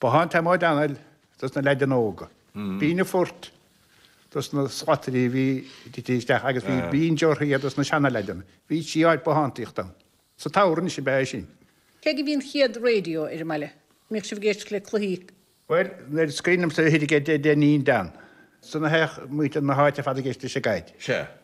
Bothán te móide anail dos na leaideanna óga. Bín a phort dos na slatairí a bhí titithe isteach agus bhí bín deortha dhe dos na seana-leaideanna. Bhí trí áit bothántaíochta ann. Sa Tower anois ab ea é sin. Cé go bhí an chéad radio ar an mbaile, mbíodh sibh ag éisteacht le cluichí? Bhuel, nuair a scaoineamsa uirthi ag deich déag níon dean, ansan a théadh muintir na háite ar fad ag éisteacht le Sé Gaeilge. Sea.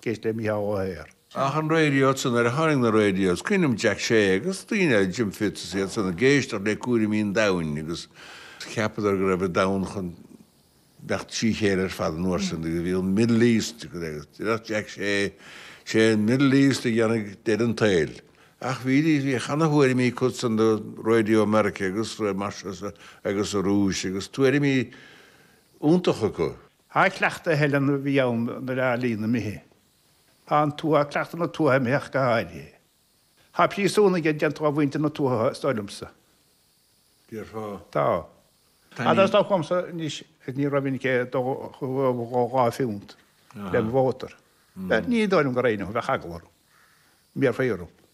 Ag éisteacht le Micheál Ó hEithir. Ach na radios, nuair a tháinig na radios? Cuimhním Jack Shea agus daoine eile, Jim Fitz is iad san, ag éisteacht le cúraimí an domhain agus cheapadar go raibh an domhan chun imeacht trí chéile ar fad an uair sin agus bhí an Middle East agus deireadh Jack Shea sé an Middle East a dhéanfaidh deireadh an tsaoil. Ach bhí bhí ana-thuairimí acu san do Radio America agus mar agus an Rúis agus tuairimí iontacha acu. An cleachtadh a theileann a bhí ann nuair a lion na Midhe an tuath, cleachtadh na tuatha imithe go háirithe. Tá príosúnaigh déanta do mhuintir na tuatha, is dóigh liomsa. Déarfá. Tá. Ach tá stop agamsa anois is ní raibh minic é dhá phiúnt le mo mhótar. Ní dóigh liom go raghainn, bheadh eagla orm go mbéarfaí orm.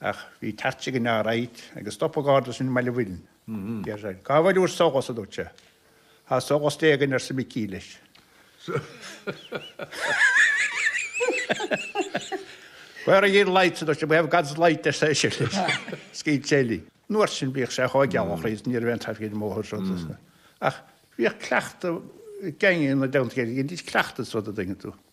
Ach bhí teacht ag an fhear ait agus stop an Garda sinn i mBaile Bhuirne. Deir sé, Cá bhfuil úr solas, a dúirt sé. Tá solas Dé againn, arsa Micí leis. Where are yer lights, a dúirt sé. We have God's light, arsa eisean leis. Scaoil sé linn. An uair sin bhíodh sé chomh geal ann is ní raibh aon traffic ar an mbóthar seo duit. Ach bhíodh cleachtadh ag daoine ina dteannta air, bhíodh cleachtadh sa rud a dhéanadh tú.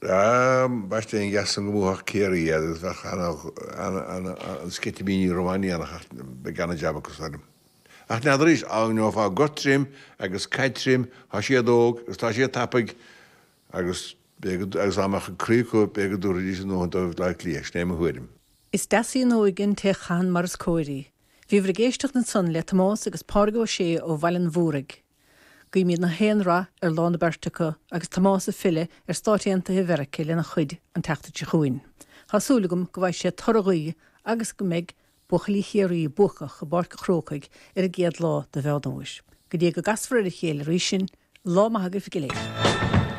Dá mbaisteadh an gas san go mbuafadh Ciarraí iad agus bheadh an sceitimíní rómhainneach ach beidh an-jab acu san fhoireann. Ach n'fheadar arís, dá ngeofá gort tirim agus caid tirim, tá siad óg agus tá siad tapaidh agus agus dá mbeadh an croí acu b'fhéidir go dtabharfaidís a ndóthain do Bhaile Átha Cliath, sin é mo thuairim. Is deas í an óige, an té a chaitheann mar is cóir í. Bhíomar ag éisteacht ansan le Tomás agus Pádraig Ó Sé ó Bhaile an Mhúraigh. Guímid gach aon rath ar lá na beirte acu agus Tomás ag filleadh ar Stáit Aontaithe Mheiricea lena chuid an tseachtain seo chugainn. Tá súil agam go bhfaighidh sé toradh a ghuí agus go mbeidh buachaillí Chiarraí buacach i bPáirc an Chrócaigh ar an gcéad lá do Mheán Fómhair. Go dtí go gcasfar ar a chéile arís sinn, lá maith agaibh go léir.